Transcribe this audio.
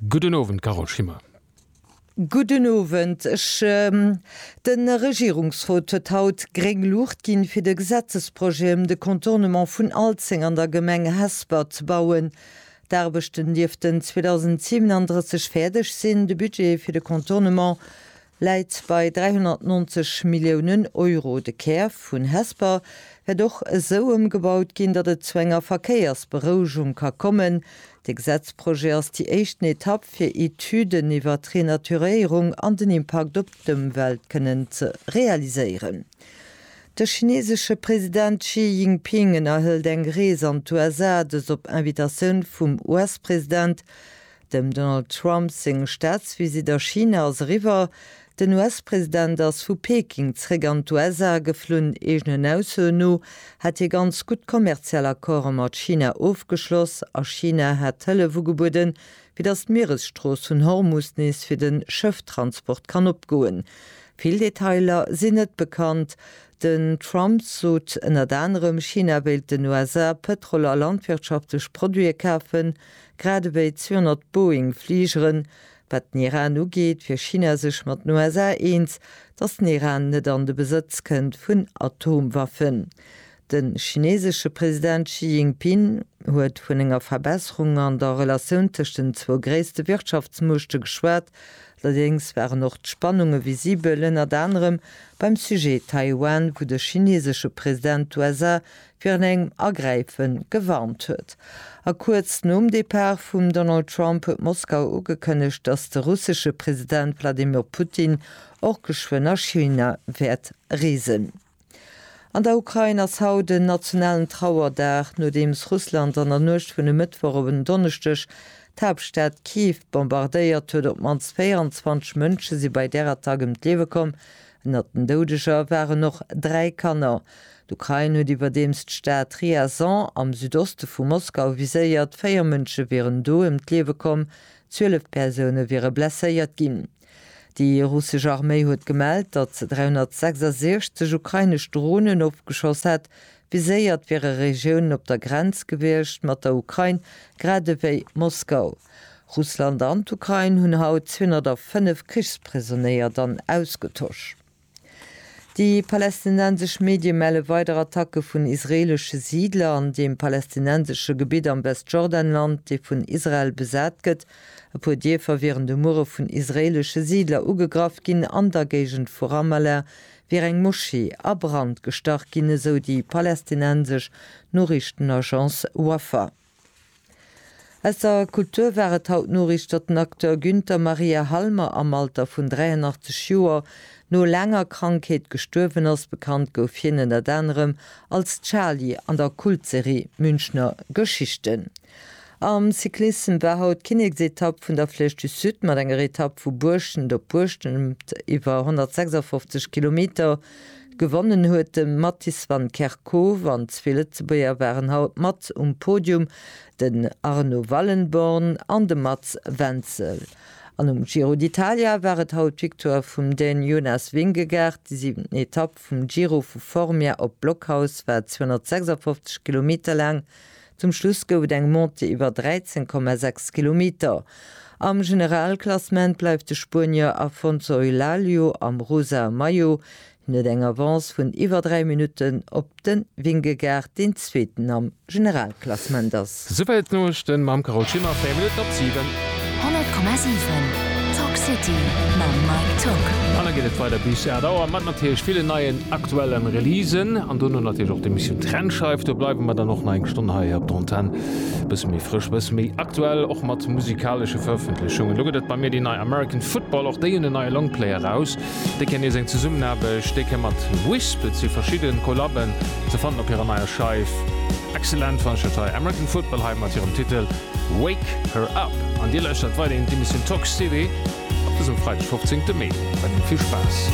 Gudden Owend, Carole Schimmer. Gudden Owend. De Regierungsrot huet haut gréng Luucht ginn, fir de Gesetzesprojet ëm de Contournement vun Alzeng an der Gemeng Hesper ze bauen. D'Aarbechten dierften 2037 fäerdeg sinn. De Budget fir de Contournement läit bei 390 Milliounen Euro. De Kär vun Hesper wäert och esou ëmgebaut ginn, datt et zu enger Verkéiersberouegung ka kommen. De Gesetzprojet ass déi éischten Etapp, fir Etüden iwwer d'Renaturéierung an den Impakt op d'Ëmwelt kënnen ze realiséieren. De chinesesche President Xi Jinping ënnerhëlt eng Rees an d'USA, dëst op Invitatioun vum US-President Dem Donald Trump seng Staatsvisitt a China ass eriwwer. Den US-President ass vu Peking zeréck an d'USA geflunn. Eegenen Aussoen no hätt hie ganz gutt kommerziell Accorde mat China ofgeschloss a China hätt Hëllef ugebueden, fir datt d'Mieresstrooss vun Hormus nees fir de Schëfftransport kann opgoen. Vill Detailer sinn net bekannt. Den Trump sot ënnert anerem, China wéilt den USA Pëtrol a landwirtschaftlech Produite kafen. Grad ewéi 200 Boeing-Fligeren, wat den Iran ugeet, wier China sech mat den USA eens, datt den Iran net an de Besëtz kënnt vun Atomwaffen. De chineesesche President Xi Jinping huet vun enger Verbesserung an der Relatioun tëscht den zwou gréisste Wirtschaftsmuechte geschwat, allerdéngs waren och d'Spannunge visibel, ënnert anerem beim Sujet Taiwan, wou de chineesesche President d'USA virun engem Agräife gewarnt huet. A kuerz nom Depart vum Donald Trump huet Moskau ugekënnegt, datt de russesche President Wladimir Putin och geschwënn a China wäert reesen. An der Ukrain ass haut en nationalen Trauerdag, nodeems Russland an der Nuecht vun e Mëttwoch op en Donneschdeg d'Haaptstad Kiew bombardéiert huet. Op d'mannst 24 Mënsche si bei där Attack ëm d'Liewe komm, Ënnert den Doudeger waren och dräi Kanner. D'Ukrain huet iwwerdeems d'Stad Ryazan am Südoste vu Moskau viséiert. Véier Mënsche wieren do ëm d'Liewe komm, zwielef Persoune wiere blesséiert ginn. Déi russesch Arméi huet gemellt, datt se 366 ukrainesch Dronen ofgeschoss hätt, Viséiert wiere Regiounen op der Grenz gewiescht mat der Ukrain, grad ewéi Moskau. Russland an d'Ukrain hunn haut 205 Krichsprisonéier dann ausgetosch. Déi palästinensesch Medie melle weider Attacke vun israeelesche Siidler an deem palästinensesche Gebitt am Westjordanland, dee vun Israel besat gëtt. E puer Dierfer wieren de Muere vun israeelesche Siidler ugegraff ginn an der Géigend vu Ramallah, wier eng Moschee a Brand gestach ginn, esou déi palästinensesch Noriichtenagence Wafa. Aus der Kultur war et haut d'Noriicht, datt den Acteur Günther Maria Halmer am Alter vun 83 Joer no laanger Krankheet gestuerwen ass. Bekannt gouf hien ënnert anerem als Charlie an der Kultserie Münchner Geschichten. Am Cyclissem war haut d'Kinneksetapp vun der Flèche du Sud mat enger Etapp vu Buerschent op Buerschent iwwer 156 Kilometer. Gewonnen huet de Mattis van Kerkhove an zwee Lëtzebuerger waren haut mat um Podium, den Arno Wallenborn an de Mats Wenzel. An um Giro d'Italia war et haut d'Victoire vum Dän Jonas Vingegaard. Déi siwenten Etapp vum Giro vu Formia op Blockhaus war 256 Kilometer laang. Zum Schluss gouf et eng Montée iwwer 13,6 Kilometer. Am Generalklassement bleift de Spuenier Afonso Eulaglio am rosa Maillot. Hien huet eng Avance vun iwwer 3 Minutten op de Vingegaard, deen Zweeten am Generalklassement ass. Souwäit d'Noriichten mam Carole Schimmer, 4 Minutten op 7. 100,7 Talk City mam Mike Tock. An da geet et weider bis 8 Auer mat natierlech villen neien aktuellen Releasen an dono natierlech och d'Emissioun Trennscheif. Do bleiwe mer dann och nach eng Stonn hei op der Antenn. E bësse méi frësch, e bësse méi aktuell, och mat musikalesche Verëffentlechungen. Elo gëtt et bei mir déi nei American Football. Och déi hunn en neie Longplay eraus. Déi kennen nees eng Zesummenaarbecht, déi kéim mat Wisp. Et si verschidden Collaben ze fannen op hirer neier Scheif. Excellent fannen ech dat hei, American Football hei mat hirem Titel. Wake Her Up an dir lauschtert weiderhin d'Emissioun Talk City op dësem Freideg 15 Mee. Weiderhin vill Spaass!